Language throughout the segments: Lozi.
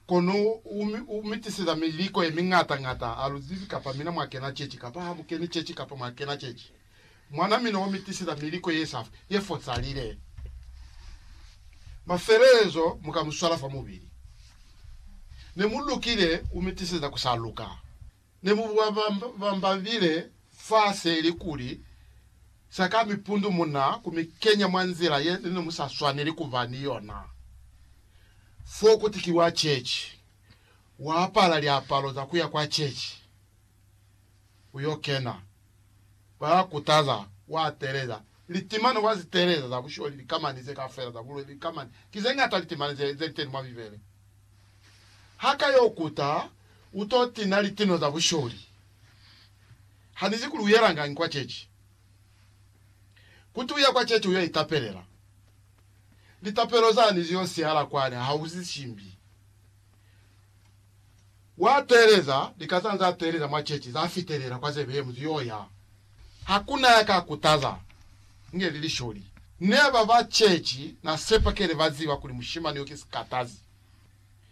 Kono u, u mi tiseza miliko ye miñata ñata, ha lu zibi kapa mina mwa kena cechi kapa ha mu keni cechi kapa mwa kena cechi. Mwana mina u mi tiseza miliko ye sa, ye fosalile. Mafelelezo mu ka mu swala fa mubili. Ne mu lukile, u mi tiseza ku sa luka. Ne mu buwa bambabile fa se ili kuli, Sa ka mi pundu mu na ku mi kenya mwa nzila ye ne mu sa swaneli ku ba ni yona. Fo kuti ki wa chechi, wa apala liapalo za ku ya kwa chechi, u yo kena, ba ya kutaza, wa teleza. Litimano wa zi teleza za busholi, likamani ze kafela za buloi, likamani ki ze ngata, litimani ze, ze li teni mwa Bibele. Ha ka yo kuta, u to tina litino za busholi. Ha ni zi kuli u yelangañi kwa ceci. Kuti u ye kwa ceci u yo itapelela. Litapelo zani zi yo sihala kwani ha u zi simbi. Wa teeleza, lika za za teeleza mwa ceci za fitelela kwa ze behemu zi yo ya. Ha ku na ya ka kutaza, inge li lisholi. Ne ba ba ceci na sepa kele ba ziba kuli mushimani yo ki sikatazi.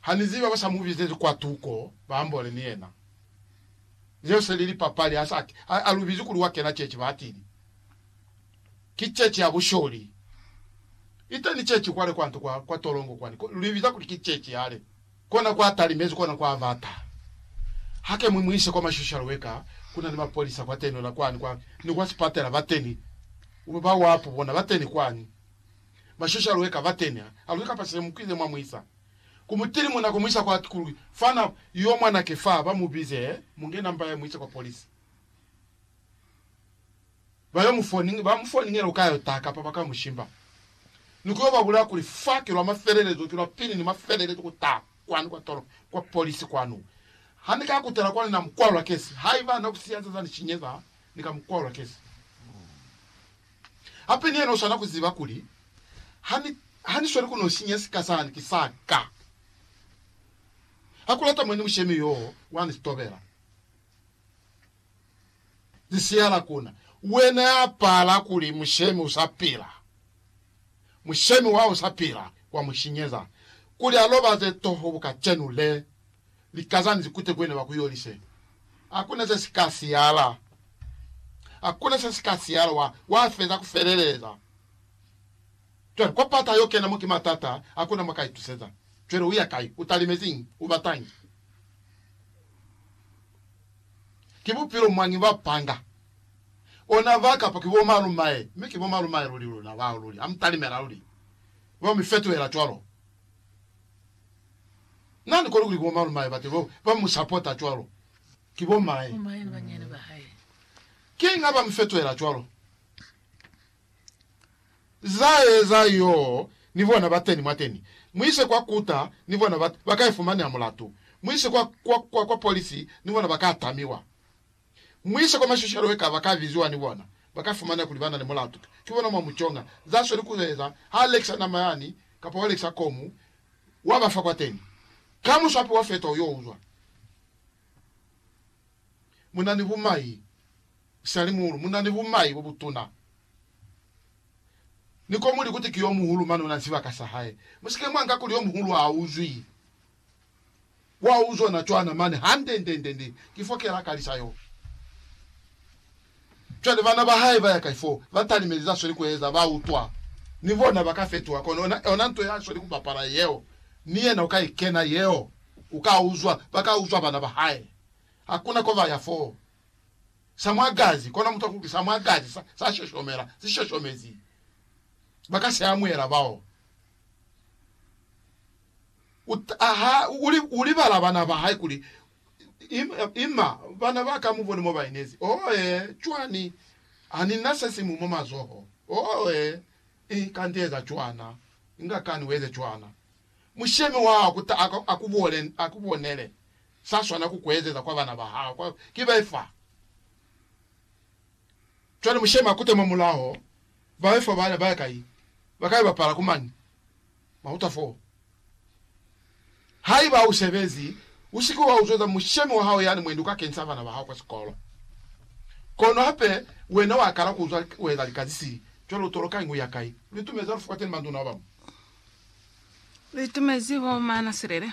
Haniziba ba sa mu bizezi kwa tuko ba ambole ni yena. Zeo se li lipapali, ha sa ki a lu bizi kuli wa kena ceci. Ba atili, Ki ceci ya busholi. Iteni ceci kwale kwa nto kwa, kwa tolongo kwani. Ko, lu ibiza kuli ki ceci yale. Kona kwa talimezi, kona kwa bata. Hake mwi mu ise kwa mashoshalo we ka, ku na ni mapolisa kwa tenola kwani, kwa, ni kwa sipatela bateni. Ba wapu bona bateni kwani. bashusha lwe ka batenya alwi kapa sile mukwile mwa muisa ku mutili muna ku muisa kwa ku fana yo mwana ke fa ba mu bize munge namba ya muise kwa police ba yo mu phone ba mu phone ngela ukayo ta kapa ba ka mu shimba ni ku yo ba bulaya kuli fa ki lwa mafelelezo ki lwa pili ni mafelelezo ku ta kwani kwa tolo kwa police kwanu ha ni ka kutela kwani na mu kwalwa kesi haiba na ku siyaza za ni shinyeza ni ka mu kwalwa kesi Hape ni yena u swana ku ziba kuli, Ha ni, ha ni sweli ku n'o sinya sika sani, ki sa ka. Ha ku lata mwa ni mushemi yoo wa ni tobela. Ni siyala ku na. Wena ya pala kuli mushemi u sa pila, mushemi wa u sa pila wa mu sinyeza, kuli a lobaze toho bukacenu le, lika zani zikute ku yena ba ku yolise. Hakuna se si ka siyala. Hakuna se si ka siyala. Wa, wa feza ku feleleza. Cwale, kwa pata yo kena mo ki matata, hakuna mo ka ituseza. Cwale u ya kai? U talimeziñi? U batañi? Ki bupilo mwañi ba panga? Ona ba kapa ki bo malumae? Mi ki bo malumae luli luna bao luli. Ha mu talimela luli. Ba mi fetuhela cwalo. Na ni koni kuli bo malum'ahe bate bao ba mu sapota cwalo ki bo m'ahe. Ki inga ba mu fetohela cwalo. Za eza yoo ni bona bateni mwateni. Mu ise kwa kuta, ni bona ba, ba ka ifumaneha mulatu. Mu ise kwa, kwa, kwa, kwa polisi, ni bona ba ka tamiwa. Mu ise kwa mashishalo eka ba ka biziwa ni bona, ba ka fumana kuli ba na ni mulatu. Ki bona mwa mu conga za sweli ku eza ha lekisa nama yani, kapa wa lekisa komu, wa ba fa kwateni. Ka muswapi wa feta u yo uzwa mu na ni bumai, salimuhulu, mu na ni bumai bo butuna. Ni komu likuti ki yo muhulu mane u na ni sibaka sa hae. Mu si ke mwa nka kuli yo muhulu ha uzwi. Wa uzwa na cwana mane hande-nde-nde-nde, ki fo kela kalisa yo. Cwale bana ba hae ba ya kai fo, ba talimezi za sweli ku eza, ba utwa. Ni bona ba ka fetuha, kono ona, ona nto ya sweli ku bapala yeo, ni yena u ka i kena yeo. U ka uzwa, ba ka uzwa bana ba hae. Hakuna ko ba ya fo. Sa mwa gazi, kono muta kuli sa mwa gazi sa, sa shoshomela, si shoshomezi. Ba ka si amuhela bao. U taha, u, u libala bana ba hae kuli, Ima, ima, bana ba ka, mubone mo ba inezi. Oh, ee, cwani, Ani na se simu mwa mazoho. Oh, ee, i, kanti eza cwana. Inga kani ueze cwana. Mushemi wa hao ku taha a ku bole, a ku bonele. Sa swana ku ku ezeza kwa bana ba hao, kwa, ki be fa. Cwale mushemi a kute mwa mulaho, ba be fa, ba, ba ya kai? Ba ka yo bapala ku mani? Mahuta 4, Haiba ha u sebezi, u si ke wa uzweza mushemi wa hao yani mwendi u ka kenisa bana ba hao kwa sikolo. Kono hape wena wa kala ku uzwa u eza lika ze si cwalo tolo ka ingu ya kai. Lu itumezi ha lu fukwateni manduna ba bañwi. Lu itumezi ho mana silele